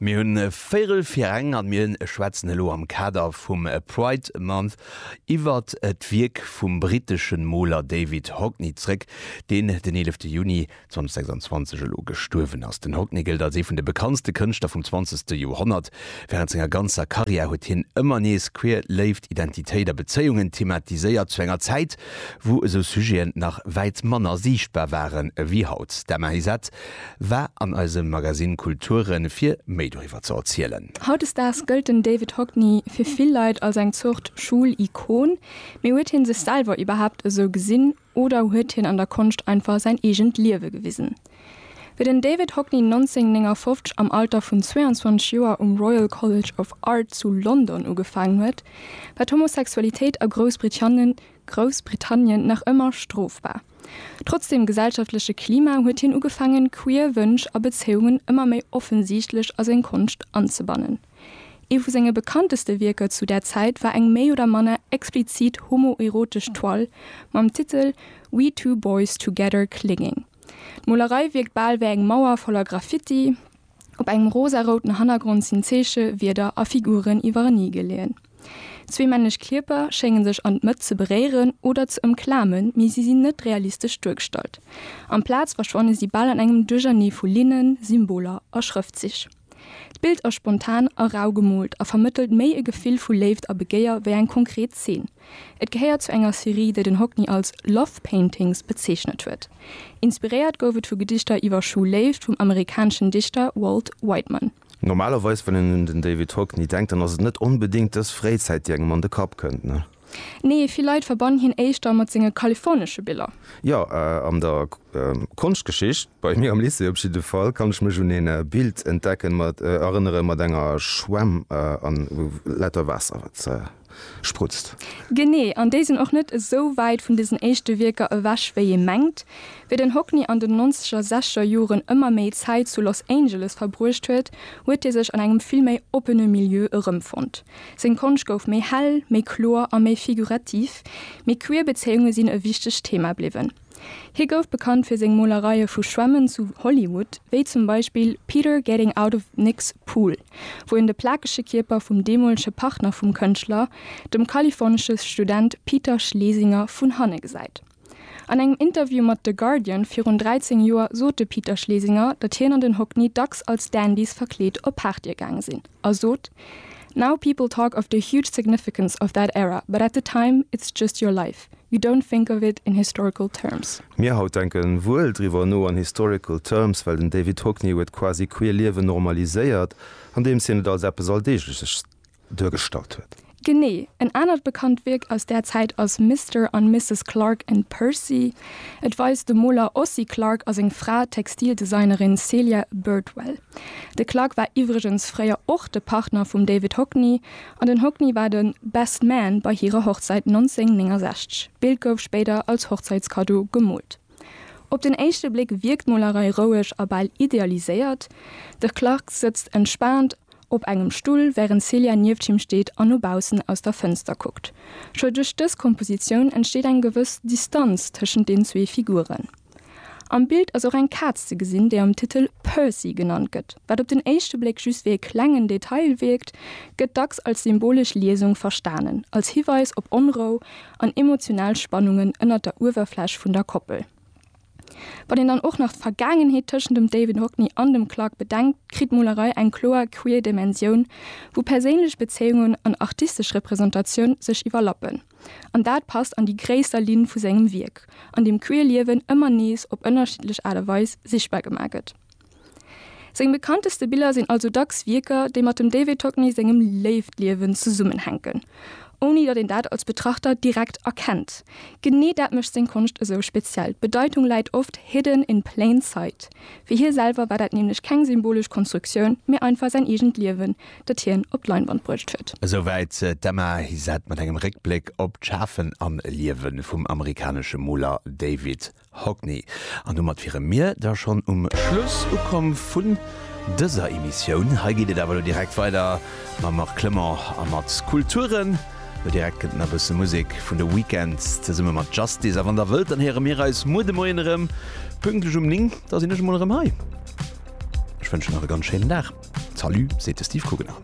Mir hunn véirel fir eng an mir schwätzen elo am Kader vum Pride Month iwwer d'Wierk vum britteschen Moler David Hockney zréck, deen den 11 Juni 2026 elo gestuerwen ass. Den Hockney gëllt als ee vun de bekanntste Kënschtler vum 20 Joerhonnert. Wärend senger ganzer Karriär huet hien ëmmer nees queer Léift, Identitéit a Bezéiungen thematiséiert, zu enger Zäit wou esou Sujeten nach wäit manner siichtbar waren ewéi haut. D'Emma Heizet War an eisem Magasinn Kulture fir méi doriwwer ze erzielen. Hautdesdaags gëllt den David Hockney fir vill Leit als eng Zort Schoul-Ikon. Mee huet hien sech selwer iwwerhaapt esou gesinn oder huet hien an der Konscht einfach säin eegent Liewe gewisen? Wéi den David Hockney 1959 am Alter vun 22 Joer um Royal College of Art zu London ugefaangen huet, war d'Homosexualitéit a Groussbritannie Groussbritannien nach ëmmer strofbar. Trotz dem gesellschaftleche Klima huet hien ugefaangen, queer Wënsch a Bezéiungen ëmmer méi offensiichtlech a seng Konscht anzebannen. Ee vu senge bekannteste Wierker zu där Zäit war eng méi oder manner explizit homoerotesch Toile mam Titel We Two Boys Together Clinging. D'Molerei wierkt bal wéi eng Mauer voller Graffiti. Op engem rosarouten Hannergrond sinn Zeeche, Wierder a Figuren iwwerenee geleeën. Zwee männlech Kierper schénge sech an d'Mëtt ze beréieren oder ze ëmklamen, mee si sinn net realistesch duergestallt. Amplaz verschwanne si bal an engem Duerchernee vu Linnen, Symboler a Schrëftzich. D'Bild ass spontan a rau gemoolt a vermëttelt méi e Gefill vu Léift a Begéier wéi eng konkret Zeen. Et gehéiert zu enger Serie, déi den Hockney als Love Paintings bezeechnet huet. Inspiréiert gouf et vu Gedichter iwwer Schulléift vum amerikaneschen Dichter Walt Whiteman. Normalerweis, wann een un den David Hockney denkt, dann ass et net onbedéngt dës Fréizäit, déi engem an de Kapp kënnt, ne? Nee, vill Leit verbannen hien éischter mat senge kalifornesche Biller. Jo, an der Konschtgeschicht, bei mir am Lycée op jidde Fall, kann ech mech un een Bild entdecken, erënneren, mat enger Schwämm a lauter Waasser, wat. sprutzt. Genee, an déi sinn och net esou wäit vun desen éischte Wierker ewech wéi ee mengt. Wéi den Hockney an den nonzeger, sechzeger Joren ëmmer méi Zäit zu Los Angeles verbruecht huet, huet hie sech an engem vill méi oppene Milieu erëmfonnt. Seng Konscht gouf méi hell, méi kloer a méi figurativ, mee queer Bezéiunge sinn e wichtegt Thema bliwwen. Hie gouf bekannt fir seng Molereie vu Schwämmen zu Hollywood, wéi zum Beispill Peter Getting Out of Nick's Pool, wou en de plakege Kierper vum deemolege Partner vum Kënschtler, dem kalifornesche Student Peter Schlesinger, vun hanne gesäit. An engem Interview mat The Guardian virun 13 Joer sot de Peter Schlesinger, datt hien an den Hockney dacks als Dandys verkleet op Partye gaange sinn, a sot, Now people talk of the huge significance of that era, but at the time, it's just your life. You don't think of it in historical terms. Mir haut denken wuel driwwer no an historical terms, well den David Hockney huet quasi queer Liewen normaliséiert, andeems hien et als eppes Alldeegleches duergestallt huet. Genee. En anert bekannt Wierk aus där Zäit ass Mister an Misses Clark and Percy. Et weist de Moler Ossie Clark a seng Fra, d'Textildesignerin Celia Birdwell. De Clarke war iwwregens fréier och de Partner vum David Hockney an den Hockney war de Best Man bei hirer Hochzäit 1969. D'Bild gouf spéider als Hochzäitskaddo gemoolt. Op den éischte Bléck wierkt d'Molerei roueg a bal idealiséiert. De Clarke sëtzt entspaant op engem Stull, wärend Celia nieft him steet an no baussen aus der Fënster kuckt. Scho duerch dës Kompositioun entsteet eng gewëss Distanz tëschent den zwee Figuren. Am Bild ass och eng Kaz ze gesinn, déi am Titel Percy genannt gëtt. Wat op den éischte Bléck just wéi e klengen Detail wierkt, gëtt dacks als symbolesch Liesung verstanen, als Hiweis op Onrou an emotional Spannungen ënnert der Uewerfläch vun der Koppel. Wann een dann och nach d'Vergaangenheet tëschent dem David Hockney an dem Clark bedenkt, kritt d'Molerei eng kloer queer Dimensioun, wou perséinlech Bezéiungen an artistesch Representatioun sech iwwerlappen. An dat passt an déi gréisser Linn vu sengem Wierk, an deem queer Liewen ëmmer nees op ënnerschiddlech Aart a Weis sichtbar gemaach gëtt. Seng bekannteste Biller sinn also dacks Wierker, déi mat dem David Hockney sengem Léiftliewen zesummenhänken, ouni datt een dat als Betrachter direkt erkennt. Genee dat mécht seng Konscht esou speziell, d'Bedeitung läit oft hidden in plain sight. Fir hie selwer war dat nämlech keng symbolesch Konstruktioun, mee einfach säin eegent Liewen, dat hien op d'Leinwand bruecht huet. Esou wäit d'Emma Hysette mat engem Réckbléck op d'Schafen a Liewe vum amerikanesche Moler David Hockney. An domat wiere mir da schonn um Schluss ukomm vun dëser Emissioun. Hei geet et awer elo direkt weider mam Marc Clement a mat Kulturen. Elo direkt kënnt nach e bësse Musek vun The Weeknd zesumme mat Justice. A wann der wëllt, dann héiere mir eis muer de Moien erëm, pünktlech um 9. Da sinn ech emol erëm hei. Ech wënschen nach e ganz schéinen Dag. Salut, seet de Steve Kugener.